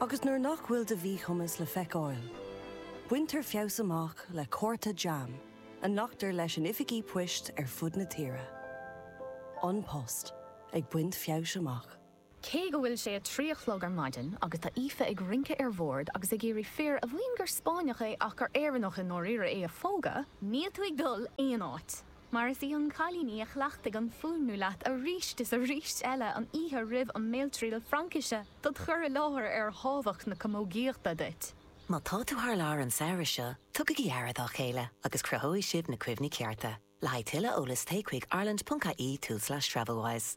agus nuair nach bhfuil do mhíchumas le feiceáil, baintear feabhas amach le cárta jam a nglactar leis in oifigí poist ar fud na tíre. An Post ag baint feabhais amach. Cé go bhfuil sé a trí a chlog ar maidin agus tá Aoife ag rince ar bhord agus ag iarraidh fir a mhaíonn gur Spáinneach é ach gur Éireannach i ndáiríre é a phógadh, Níl tú ag dul aon áit! Mar is í an cailín í a chleachtaigh an fuaimniú leat arís is arís eile an oíche roimh an mBéaltriail Fraincise do do chur i láthair ar thábhacht na camógaíochta duit. Má tá tú thar lear an samhradh seo, tugaigí aire dá chéile agus cruthóidh sibh na cuimhní cearta. Le haghaidh tuilleadh eolais téigh chuig ireland.ie/travelwise.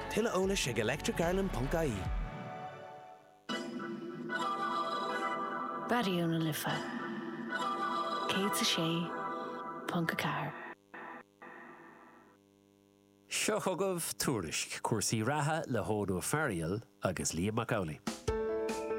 Tuilleadh eolais ag electricireland ponc ie. Raidió na Life 106.4. Seo chugaibh Tuairisc cúrsaí reatha le hEoghan Ó Fearghaíl agus Liam Mac Amhlaigh.